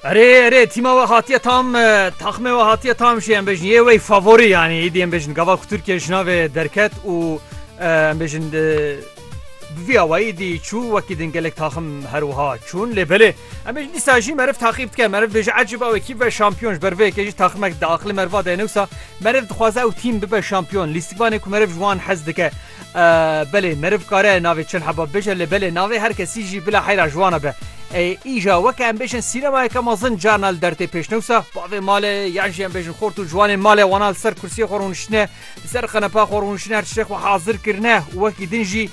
Erê erê tîma we hatiye tam taxmê we hatiye tam jî em bêjin yê wey favorî yanî îdî em bêjin gava ku Tirkiye ji navê derket û em bêjin bi vî awayî dî çû wekî din gelek taxim her wiha çûn lê belê em bêjin dîsa jî meriv taqîb dike meriv bêje ecîb ew ekîb ve şampiyon ji ber vê yekê jî taximek di aqilê meriva de ne wisa meriv dixwaze ew tîm bibe şampiyon lîstikvanê ku meriv ji wan hez dike Belê meriv kare navê çend hebab bêje lê belê navê her kesî jî bila heyra ji wan e be. Ê îja weke em bêjin sînemayeke mezin carna li dertê pêşnewsa, bavê malê yan jî em bêjin xort û ciwanên malê wana li ser kursiyê xwe rûniştine, li ser qenepa xwe rûniştine her tiştê xwe hazir kirine û wekî din jî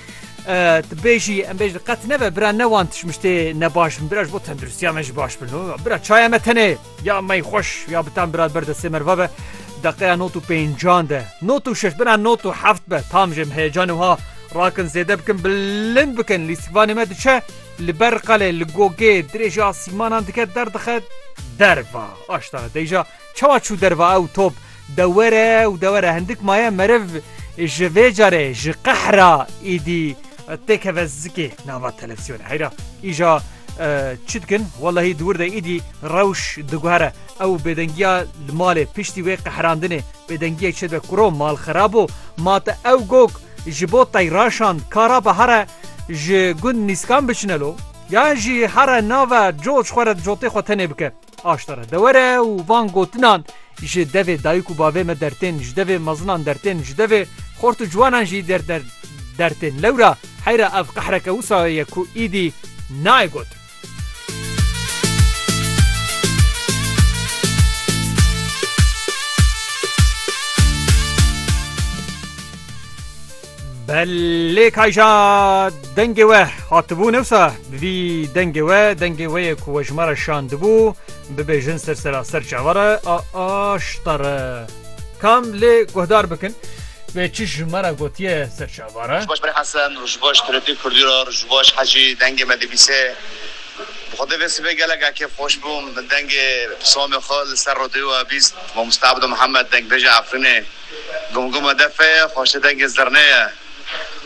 tu bêjî em bêjin qet nebe bira ne wan tişmiştê ne baş bin bira ji bo tendirustiya me jî baş bin. Bira çaya me tenê. Ya mey xweş ya bi tam birad ber destê merva be deqeya not û pêncan de not û şeş bina not û heft be tam jê em heyecanê wiha rakin zêde bikin bilind bikin lîstikvanê me diçe li ber qelê li gogê dirêjê asîmanan dike derdixe derva aştana deyja çawa çû derva ew top Dewere û dewere hindik maye meriv ji vê carê ji qehra îdî têkeve zikê nava televîzyonê. Heyra îja çi dikin welahî di wir de îdî rewş diguhere ew bêdengiya li malê piştî wê qehrandinê bêdengiyek çê dibe kuro mal xerab o ma te ew gog ji bo tey raşand ka rabe here ji gund nîskan biçine lo yan jî here nave coc xwe re cotê xwe tenê bike. Aşta re dewer e û van gotinan, Ji devê dayik û bavê me dertên, ji devê mezinan dertên, ji devê xort û ciwanan jî dertên. Lewra heyra ev qehreke wisa ye ku îdî nayê gotin. Belê kayja dengê we hatibû newsa bi vî dengê we dengê wê yê ku we ji me re şandibû bibêjin ser seraser çawa re a aşta re kam lê guhdar bikin wê çi ji me re gotiye ser çawa re. Ji baş Berê Hesen û ji baş Turetî Kurdîro û ji baş Hecî dengê me dibîse. Bi xwe de vê sibê gelek a kêfxweş bûm. Min dengê pisamê xwe li ser radyoya bîst Mamoste Ebdo Mihemed dengbêja Efrînê. Gomgoma defe ye, xweşê dengê zirnê ye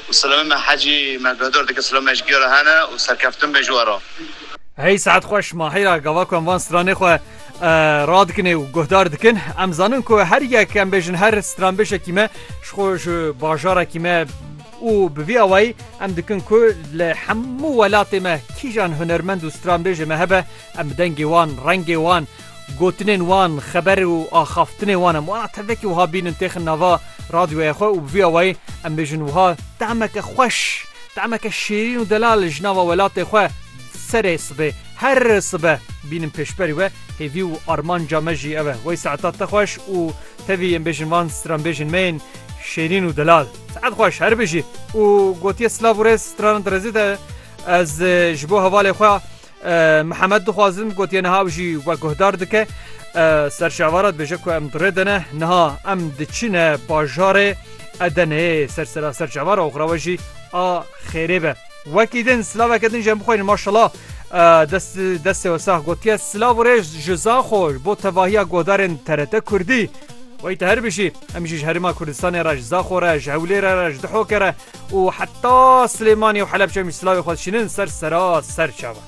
û silamê me Hecî me guhdor dike silamê ji gera hene û serkeftin be ji we re. Hey saet xweş Mahira gava ku em van stranê xwe radikinê û guhdar dikin em zanin ku her yek em bêjin her stranbêjekî me ji xwe ji bajarekî me û bi vî awayî em dikin ku li hemû welatê me kîjan hunermend û stranbêjê me hebe em bi dengê wan, rengê wan, gotinên wan, xeber û axaftinê wan em wana tevekî wiha bînin têxin nava radyoya xwe û bi vî awayî em bêjin wiha temeke xweş, temeke şêrîn û delal ji nava welatê xwe serê sibê her sibe bînin pêşberî we hêvî û armanca me jî ew e wey saeta te xweş û tevî em bêjin van stranbêjên me yên şêrîn û delal. Saet xweş her bijî û gotiye silav û rêz stranan di rêzê de ez ji bo hevalê xwe Mihemed dixwazin gotiye niha ew jî we guhdar dike. Ser şevara dibêje ku em dirê dene niha em diçine bajarê Edeneyê ser sera ser şevara oxra we jî a xêrê be. Wekî din silaveke din jî em bixwînin maşala destê we sax gotiye silav û rêj ji Zaxo bo tevahiya guhdarên TRT Kurdî. Wey te her bijî, em jî ji Herêma Kurdistanê re ji Zaxo re ji Hewlêrê re ji Dihokê re û heta Silêmanî û Helepçe em jî silavê xwe dişînin ser sera serçavan.